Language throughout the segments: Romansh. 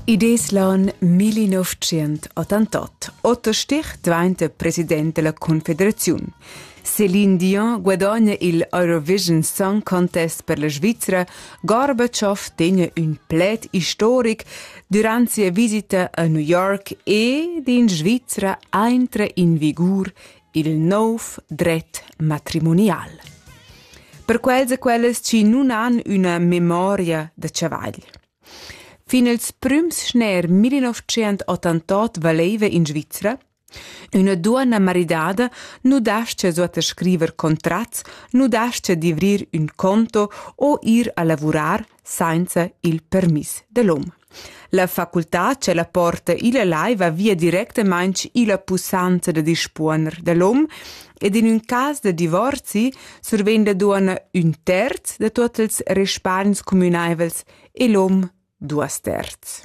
Id es l'an 1988. Otta Stich dvainta president della Confederaziun. Céline Dion guadagna il Eurovision Song Contest per la Svizzera. Gorbaciov tegna ün pled historic durant sia visita a New York e d'in Svizzera aintra in vigur il nov dret matrimonial. Per quels e quellas chi nun han üna memoria da chavagl. Fin ils prüms schner 1988 valeva in Svizzera Üna duonna maridada nu dascha suot scriver contrats, nu dascha d'ivrir ün conto o ir a lavurar sainza il permiss dell'hom. La facultà che la porta illa lai va via directamaing illa pussanza da dispuoner dell'hom ed in ün cas da divorzi survegn la duonna ün terz da tuot ils respargns cumünaivels e l'hom duos terz.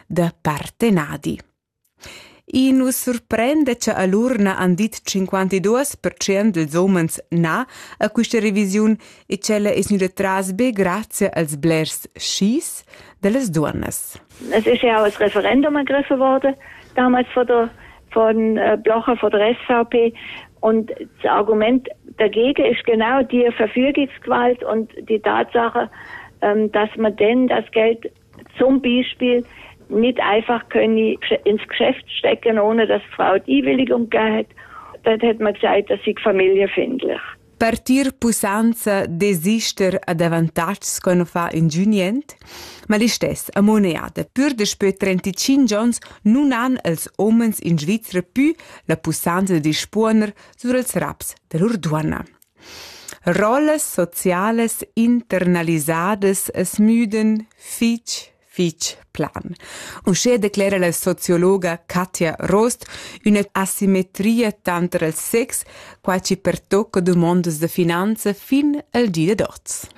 da partenadi. I nu surprende cha all'urna han dit 52% dels homens na a quista revisiun e ch'ella es gnüda tras be grazie als blers skis da las duonnas. Es ist ja auch das Referendum ergriffen worden, damals von der von äh, Blocher, von der SVP. Und das Argument dagegen ist genau die Verfügungsgewalt und die Tatsache, ähm, dass man denn das Geld zum Beispiel nicht einfach können ins Geschäft stecken, ohne dass Frau die Willigung hat. Dort hat man gesagt, dass ich Familie findlich. Partir pussanza desister a avantatgs che non fa ingün niente? Ma l'istess a moneda. Pur daspö 35 ans nun han els homens in Svizra più la pussanza di spuoner sur els raps da lur duonna. Rollas socialas internalisadas as müdan fich fich plan. Uschè declera la sociologa Katja Rost üna asimetria tanter il sex, quai chi pertocca dumondas da finanza fin al di dad hoz.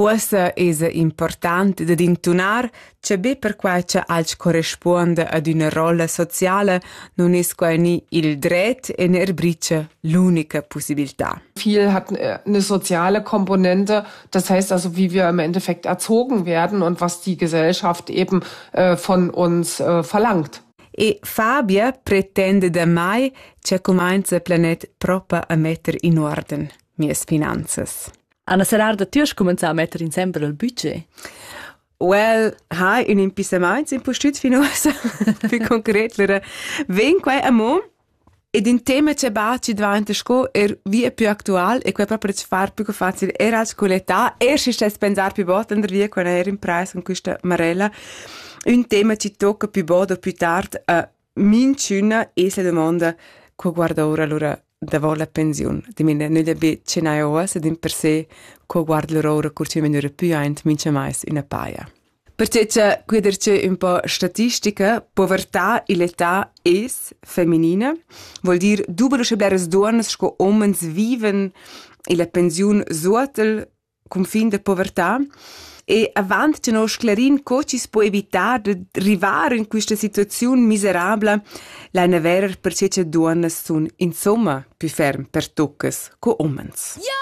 Uossa esa important dad intunar cha be perquai cha alch correspuonda ad üna rolla sociala nun es quai gni il dret e neir bricha l'unica pussibiltà. Viel hat eine soziale Komponente, das heißt also, wie wir im Endeffekt erzogen werden und was die Gesellschaft eben äh, von uns äh, verlangt. E Fabia pretende da mai che cumainza planet propa a metter in uorden mies finanzas. Anna Serrar da tü has cumenzà a metter insembel il budget. Well, ha in impissamaints impustüt fin uossa. Più concret, lura ven quai amo ed in tema che baci dvanta sco er via più actual e quai proprio ci far più facile er als qualità e si stes pensar più volte andar via con er in preis con questa marella un tema ci tocca più bod o più tard a Minchüna es la dumonda co guarda oura lura davo la pensiun. Dimena nü da be tgnair oas ed in per se co guarda lura oura cur chi vegn oura pü aint mincha mais üna paja. Perche cha que dercheu ün po statistica, povertà ill'età es feminina, vuol dir dubel uschè bleras duonnas sco homens viven illa pensiun suotel cunfin da povertà. E avant tenor sclerin co chi's po evitar da rivar in quista situaziun miserabla, laina verer per che duonnas sun insomma più ferm pertuccas co umens. Yeah!